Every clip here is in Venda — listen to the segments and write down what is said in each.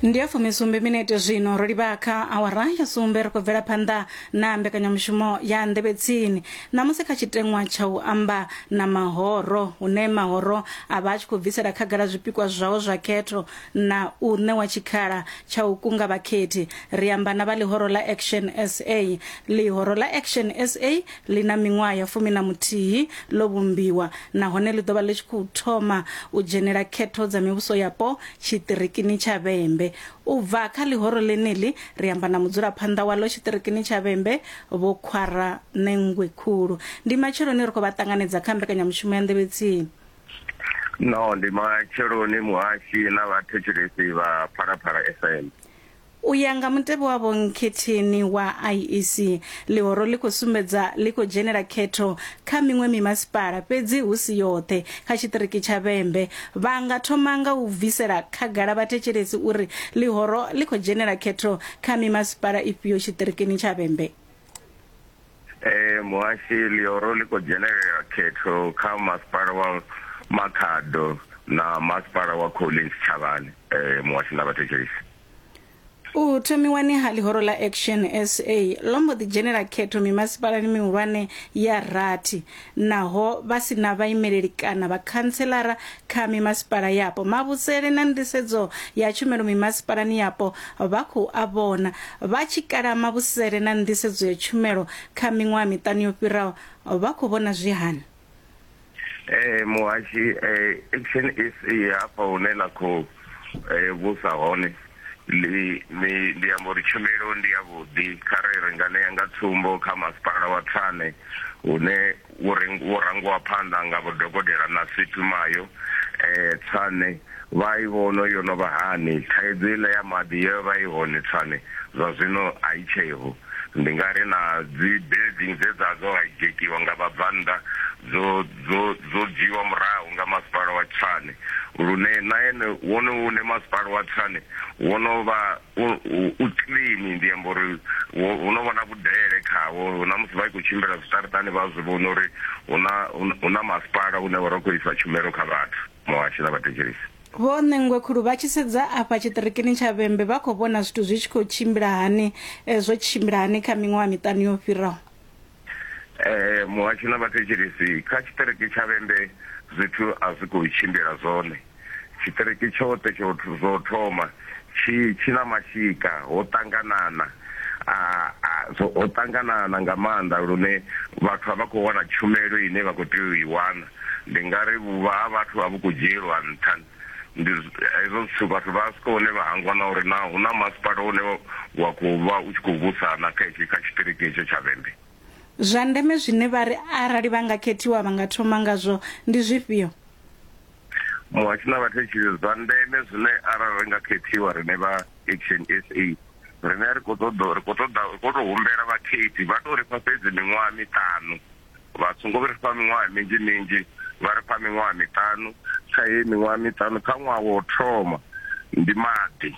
ndi ya fumisumbe minete zwino ro livha kha awara ya sumbe ri khou bvela phanḓa na mbekanyamushumo ya nḓevhe tsini ṋamusi kha tshiteṅwa tsha u amba na mahoro hune mahoro a vha a tshi khou bvisela khagala zwipikwa zwao zwa khetho na u ṋewa tshikhala tsha u kunga vhakhethi ri amba na vha ḽihoro ḽa action sa ḽihoro ḽa action sa ḽi na miṅwaha ya fumi na muthihi ḽo vhumbiwa nahone ḽi ḓo vha ḽi tshi khou thoma u dzhenela khetho dza mivhuso yapo tshiṱirikini tsha Vhembe. U bva kha ḽihoro ḽeneḽi ri amba na mudzulaphanḓa waḽo tshiṱirikini tsha Vhembe, Vho Khwara Nengwe Khulu. Ndi matsheloni ri khou vha ṱanganedza kha mbekanyamushumo ya Nḓevhe Tsini. No, ndi matsheloni muhashi na vhathetshelesi vha Phalaphala FM. U ya nga mutevhe wa vhonkhetheni wa IEC, ḽihoro ḽi khou sumbedza ḽi khou dzhenela khetho kha miṅwe mimasipala fhedzi hu si yoṱhe. Kha tshiṱiriki tsha Vhembe, vha nga thoma nga u bvisela khagala vhathetshelesi uri ḽihoro ḽi khou dzhenela khetho kha mimasipala ifhio tshiṱirikini tsha Vhembe. Ee muhashi, ḽihoro ḽi khou dzhenelela khetho kha masipala wa Makhado na masipala wa Collins Tshavhani. Ee muhashi na vhathetshelesi. u thomiwani ha ḽihoro ḽa action sa ḽo mbo ḓi dzhenela khetho mimasipalani mihulwane ya rathi naho vha si na vhaimeleli kana vhakhanselara kha mimasipala yapo mavhusele na nḓisedzo ya tshumelo mimasipalani yapo vha khou a vhona vha tshi kala mavhusele na nḓisedzo ya tshumelo kha miṅwaha miṱanu yo fhiraho vha khou vhona zwihani eh muhashi eh action is hafha hune la khou eh, vhusa hone ndi ndi amba uri tshumelo ndi yavhuḓi kha re ri nga ṋea nga tsumbo kha masipala wa tshane hune wo rangiwa phanḓa nga vhodokotela na sipimayo um tshane vha i vhono yo no vha hani thaidzo iḽa ya maḓi yo vha i hone tshane zwa zwino a i tsheho Ndi nga ri na dzi building dze dza vha dzo hijackiwa nga vhabvannḓa dzo dzo dzo dzhiiwa murahu nga masipala wa Tshwane lune na ene wone une masipala wa Tshwane wo no vha u u clean ndi amba uri wo hu no vha na vhudele khawo na musi vha tshi khou tshimbila zwiṱaraṱani vha a zwi vhona uri hu na hu na masipala une wa ri u khou isa tshumelo kha vhathu, muhashi na vhathetshelesi. vho ṋengwe khulu vha tshi sedza afha tshiṱirikini tsha vhembe vha khou vhona zwithu zwi tshi khou tshimbila hani eh, zwo tshimbila hani kha miṅwaha miṱanu yo fhiraho eh, muhashi na vhathetshelesi kha tshiṱiriki tsha vhembe zwithu a zwi khou tshimbila zwone tshiṱiriki tshoṱhe tsho zwo thoma tshi tshi na mashika ho ṱanganana a- a- zwo- ho ṱanganana nga maanḓa lune vhathu a vha khou wana tshumelo ine vha khou tea u i wana Ndi nga ri vhuvha ha vhathu a vhu khou dzhielwa nṱha. Ndi hezwo zwithu vhathu vha a swika hune vha hangwa na uri naa hu na masipala une wa khou vha u tshi khou vhusa na kha hetshi kha tshiṱiriki hetsho tsha Vhembe. Zwa ndeme zwine vha ri arali vha nga khethiwa vha nga thoma ngazwo ndi zwifhio? Muhasho na Vhathetshelesi, Zwa ndeme zwine arali ri nga khethiwa riṋe vha Action sa riṋe ri khou ṱoḓa ri khou ṱoḓa ri khou tou humbela vhakhethi vha tou ri fha fhedzi miṅwaha miṱanu. vha songo ri fha miṅwaha minzhi minzhi vha ri fha miṅwaha miṱanu kha heyi miṅwaha miṱanu kha ṅwaha wa u thoma ndi maḓi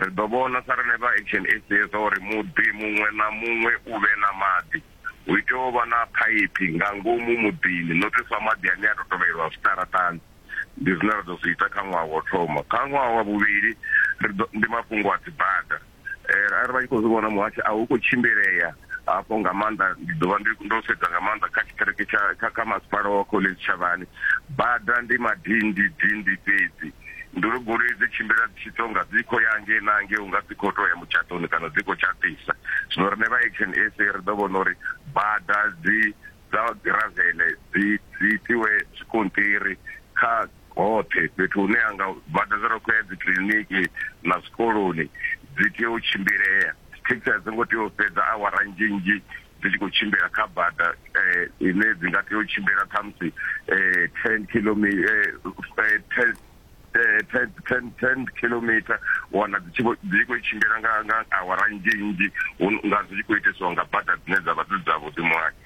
ri ḓo vhona sa rine vha action sa zwa uri muḓi muṅwe na muṅwe u vhe na maḓi hu itea u vha na phaiphi nga ngomu muḓini no thusa maḓi ane a to tovhelwa zwiṱaraṱani ndi zwine ra ḓo zwi ita kha ṅwaha wa u thoma kha ṅwaha wa vhuvhili ndi mafhungo a dzibada eh, arali vha tshi khou zwi vhona muhasho a hu khou tshimbilea hafho nga maanḓa ndi ḓovha ndi ndo sedza nga maanḓa kha tshiṱiriki tsha kha kha masipala wa college tshavhani bada ndi madindi dindi fhedzi ndi uri goloi dzi tshimbila dzi tshi tonga dzi khou ya ngei na ngei unga dzi khou tou ya mutshatoni kana dzi khou tshatisa zwino riṋe vha action sa ri ḓo vhona uri bada dzi dza giravele dzi dzi itiwe zwikontiri kha hoṱhe fhethu hune ha nga bada dza no khou ya dzi kiḽiniki na zwikoloni dzi tea u tshimbilea thekhisi a dzi ngo tea u fhedza awara nzhinzhi dzi tshi khou tshimbila kha bada ine dzi nga tea u tshimbila khamusi ten kilomita ten eh, ten kilometer wana dzi tshi khou tshimbila nga nga awara nnzhi nnzhi nga zwi tshi khou itiswa nga bada dzine dza vha dzi dza vhuḓimwani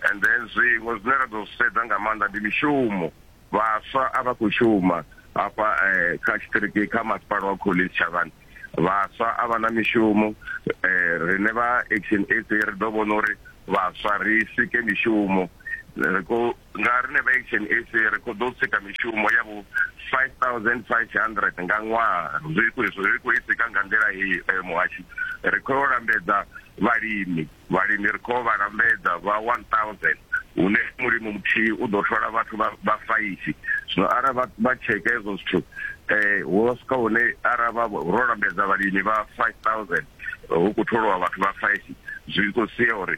and then zwiṅwe zwine ra ḓo zwi sedza nga maanḓa ndi mishumo vhaswa a vha khou shuma hafha eh, kha tshiṱiriki kha masipala wa college tshavhani vhaswa a vha na mishumo eh, rine vha action sa ri ḓo vhona uri vhaswa ri sike mishumo ri khou Nga riṋe vha Action SA ri khou ḓou sika mishumo ya vho 5500 nga ṅwaha, ri khou i sika nga nḓila hei Muhasho, ri khou yo lambedza vhalimi, vhalimi ri khou vha lambedza vha 1000 hune mulimi muthihi u ḓo thola vhathu vha faifi. Zwino arali vha tsheka hezwo zwithu hu ḓo swika hune arali ro lambedza vhalimi vha 5000 hu khou tholiwa vhathu vha faifi zwi ḓo sia uri.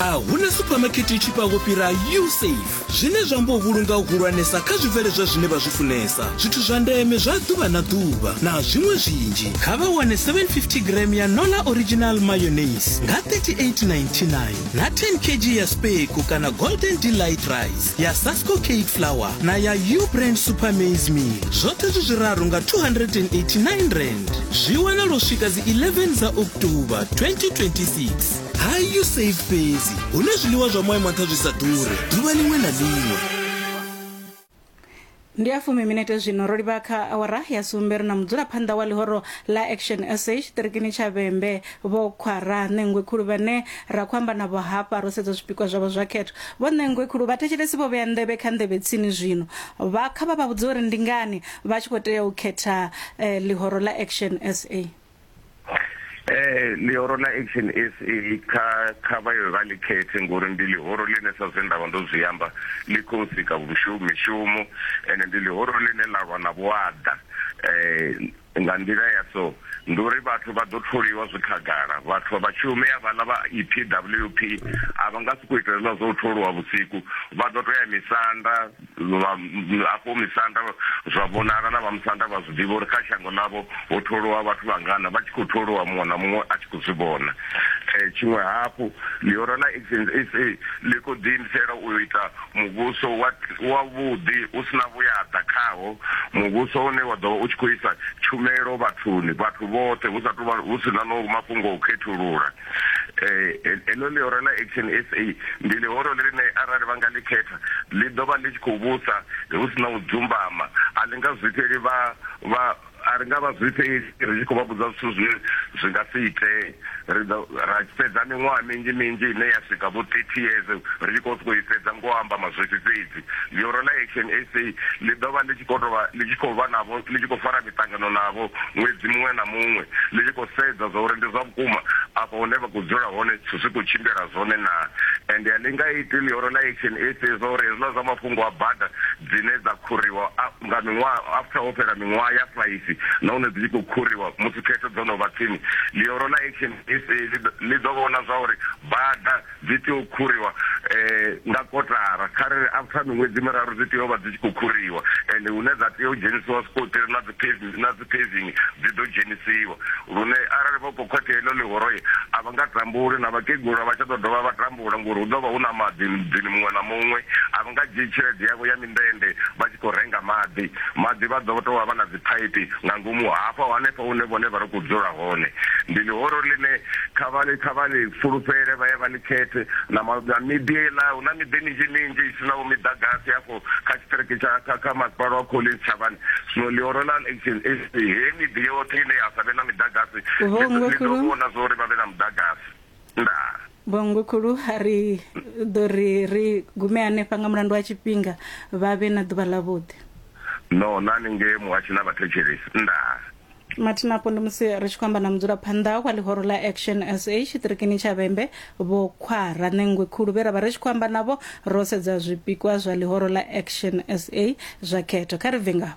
a hu na suphamakete i tshifhaho fhira usafe zwine zwa mbo vhulunga u hulwanesa kha zwibveledzwa zwine vha zwi funesa zwithu zwa ndeme zwa ḓuvha na ḓuvha na zwiṅwe zwinzhi kha vha wane 750 gram ya nola original mayonnaise nga 3899 na 10 kg ya speko kana golden delight rice ya sasco cake flour na ya u brand super maize meal zwoṱhe zwi zwiraru nga 289 rand zwi wanala u swika dzi 11 dza oktoba 2026 hi u save fhedzi hune zwiḽiwa zwa moya maṱha zwi sa ḓure ḓuvha ḽiṅwe na ḽiṅwe ndi a fumi minete zwino ro livha kha awara ya sumbe ri na mudzulaphanḓa wa ḽihoro ḽa action sa tshiṱirikini tsha vhembe vho khwara ṋengwe khulu vhane ra khou amba navho hafha ro sedza zwipikwa zwavho zwa khetho vho ṋengwe khulu vhathetshelesi vho vhea nḓevhe kha nḓevhe tsini zwino vha kha vha vha vhudza uri ndi ngani vha tshi khou tea u khetha eh, ḽihoro ḽa action sa eh lihoro ḽa action is e, kha kha vha yo vha likhethe ngori ndi lihoro ḽine sa zwe ndavha ndo zwi amba ḽi khou sika vhushumo mishumo ende ndi lihoro ḽine ḽa lwa na vhuaḓa eh nga nḓila ya so ndi uri vhathu vha ḓo tholiwa zwi khagala vhathu vha shume ya vhala vha EPWP a vha nga si khou ita hezwiḽa zwa u tholiwa vhusiku vha ḓo to ya misanda Vha afho misanda zwa vhonala na vha musanda vha zwi ḓivha uri kha shango ḽavho ho tholiwa vhathu vhangana vha tshi khou tholiwa muṅwe na muṅwe a tshi khou zwi vhona. Tshiṅwe hafhu, ḽihoro ḽa Athens SA ḽi khou ḓiimisela u ita muvhuso wa wavhuḓi u si na vhuyaḓa khaho, muvhuso une wa ḓo vha u tshi khou isa tshumelo vhathuni, vhathu vhoṱhe hu sa tou vha hu si na no mafhungo a u khethulula. eh, heḽo ḽihoro ḽa action sa ndi ḽihoro ḽine arali vha nga ḽi khetha ḽi ḓo vha ḽi tshi khou vhusa hu si na u dzumbama a ḽi nga zwifheli vha vha a ri nga vha zwifheli ri tshi khou vha vhudza zwithu zwi zwi nga si itee ri ḓo ra fhedza miṅwaha minzhi minzhi ine ya swika vho thirty years ri tshi khou sokou i fhedza ngo amba mazwifhi fhedzi Biro ḽa Action SA ḽi ḓo vha ḽi tshi khou tou vha ḽi tshi khou vha navho, ḽi tshi khou fara miṱangano navho ṅwedzi muṅwe na muṅwe, ḽi tshi khou sedza zwa uri ndi zwa vhukuma afha hune vha khou dzula hone zwithu zwi khou tshimbila zwone naa. Ende a ḽi nga iti ḽihoro ḽa Action SA zwa uri hezwiḽa zwa mafhungo a bada dzine dza khuriwa a, nga miṅwaha, after ho fhela miṅwaha ya faifhi nahone dzi tshi khou khuriwa musi khetho dzo no vha tsini, ḽihoro ḽa Action SA ḽi ḓo, ḽi ḓo vhona zwa uri bada. Dzi tea u khuriwa nga kotara, kha ri ri after miṅwedzi miraru dzi tea u vha dzi tshi khou khuriwa ende hune dza tea u dzhenisiwa zwikonṱiri na dzi phevi, na dzi pheving dzi ḓo dzhenisiwa lune arali vha khou khwaṱhela heḽo ḽihoro a vha nga tambuli na vhakegulu a vha tsha ḓo dovha vha tambula ngori hu ḓo vha hu na maḓi muḓini muṅwe na muṅwe. A vha nga dzhii tshelede yavho ya mindende vha tshi khou renga maḓi, maḓi vha ḓo tou vha vha na. phaiphi nga ngomu hafho hanefha hune vhone vha ri khou dzula hone. Ndi ḽihoro ḽine kha vha ḽi kha vha ḽi fulufhele vha ye vha ḽi khethe na na miḓi heiḽa. Hu na miḓi minzhi minzhi i si naho miḓagasi hafho kha tshiṱiriki tsha kha kha masipala wa Collins Tshavhani. Zwino ḽihoro ḽa Action SA heyi miḓi yoṱhe ine ya sa vhe na miḓagasi ḽi ḓo vhona zwa uri vha vhe na muḓagasi. Ndaa. vhangwekhulu ri ḓo ri ri gume hanefha nga mulandu wa tshifhinga vha vhe na ḓuvha ḽavhuḓi no na ni nge muhatshi na vhathetshelesi ndaa mathinapo ndi musi ri tshi khou amba na mudzulaphanḓa wa ḽihoro ḽa action sa tshiṱirikini tsha vhembe vho khwara nengwe khulu vhe ra vha ri tshi khou amba navho ro sedza zwipikwa zwa ḽihoro ḽa action sa zwa khetho kha ri bve ngaho